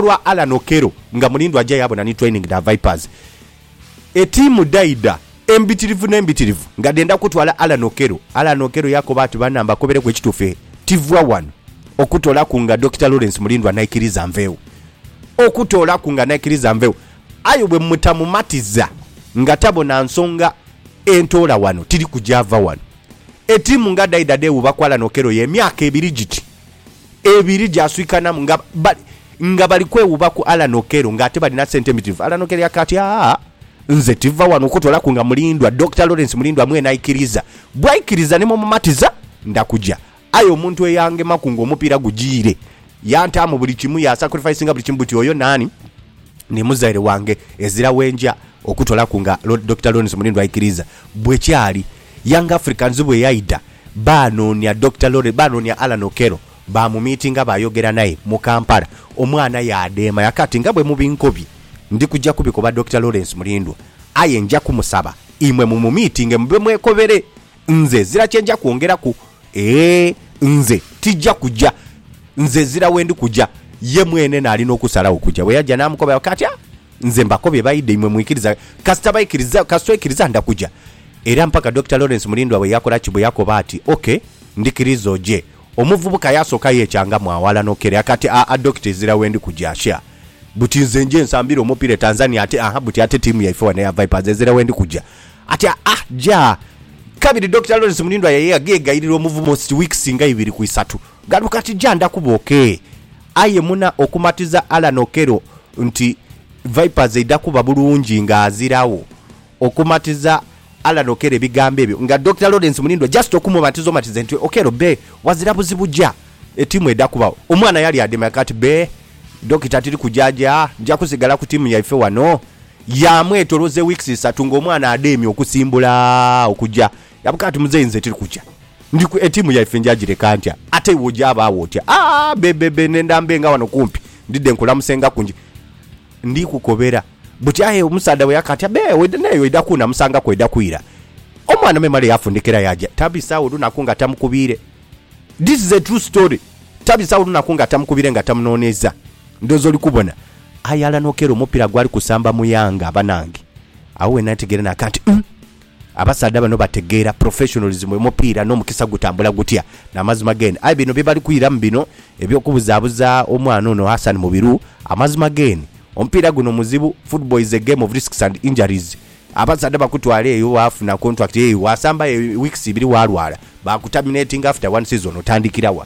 lwa Allan Okello nga mulindwa aja yaabona ni training dha Vipers. Etiimu dhaidha embitirivu n'embitirivu nga dhendha kutwala Allan Okello. Allan Okello yakoba ati, Bana mbakobereku ekituufu tiva wano okutoolaku nga Dokita Lawrence Mulindwa naikiriza nvegho. Okutoolaku nga naikiriza nvegho. Aye bwe mutamumatiza nga tabona nsonga entoola wano tiri kuja va wano. Etiimu nga dhaidha dhewuuba ku Allan Okello y'emyaka ebiri giti. ebiri gyaswikanamu nga bali nga bali kwewuuba ku Allan Okello ng'ate balina sente mbitirivu. Allan Okello yaka ati, Aa, nze tiva wano okutoolaku nga Mulindwa, Dokita Lawrence Mulindwa mwene aikiriza. Bw'aikiriza ni mu mumatiza, nda kuja. Aye omuntu eyangemaku ng'omupiira gujiire, yantaamu buli kimu, yasakurifayisinga buli kimu buti oyo naani? Ni muzaire wange, ezira wenja okutoolaku nga Dokita Lawrence Mulindwa aikiriza. Bwe kyali. Young Africans bweyaidha baanoonia Dokita Lawrence, baanoonia Allan Okello baamumiitinga baayogera naye mu Kampala, omwana yaadeema yakaati nga bwe mubinkobye ndi kuja kubikoba Dokita Lawrence Mulindwa aye nja kumusaba imwe mumumiitinge mube mwekobere nze ezira kye nja kwongeraku eeh nze tija kuja nze ezira we ndi kuja ye mwene naali n'okusalawo okuja. Bweyaja naamukoba yakaati ah nze mbakobye baidha imwe mwikiriza kasita baikiriza kasita oikiriza nda kuja. Era mpaka Dokita Lawrence Mulindwa bwe yakola ki? Bwe yakoba ati, OK, ndikiriza oje. Omuvubuka yasooka yeecangamu aghala n'okukereera kati, Aa, Dokita, ezira wendi kuja. Sha! Buti nze nje nsambire omupiira e Tanzania ate, aha, buti ate ttiimu yaife wano eya Vipers ezira wendi kuja. Ati, Aa, ja! Kabiri Dokita Lawrence Mulindwa yaye yagheegayirira omuvubuka almost weeks nga ibiri ku isatu. Gano kati ja ndakuba OK. Aye muna okumatiza Allan Okello nti Vipers eidha kuba bulungi ng'aziragho, Okumatiza Allan Okello ebigambo ebyo nga Dokita Lawrence Mulindwa just okumubatiza omatize nti Okello bee wazira buzibu ja etiimu eda kubagho omwana yali ademya kati bee Dokita tiri kuja ja nja kusigala ku tiimu yaife wano yamwetoloza eweeks isatu nga omwana ademye okusimbula okuja yabuka ati muzeyi nze tiri kuja ndi ku etiimu yaife nja gireka ntya ate iwe oja abagho otya aah bebebe nenda mbe nga wano kumpi ndidde nkulamusengaku nje Ndi kukobera buti aye omusaadha bwe yakatya be oidha n'eyo oidha kuuna musangaku oidha kwira. Omwana me male yafundikira yaaja tabisagho lunaku nga tamukubiire. This is a true story tabisagho lunaku nga tamukubiire nga tamunooneiza. Ndhooza oli kubona. Aye alanhokeera omupiira gwali kusamba mu Yanga banange. Agho we nategeera naaka nti, Umm! Abasaadha bano bategeera professionalism emupiira n'omukisa gutambula gutya n'amazima g'en aye bino byebali kwiramu bino eby'okubuzabuza omwana ono Hassan Mubiru amazima g'en omupiira guno muzibu football is a game of risks and injuries abasaadha bakutwala eyo wafuna contract eyo wasamba eyo weeks ibiri walwala bakuterminatinga after one season otandikira wa?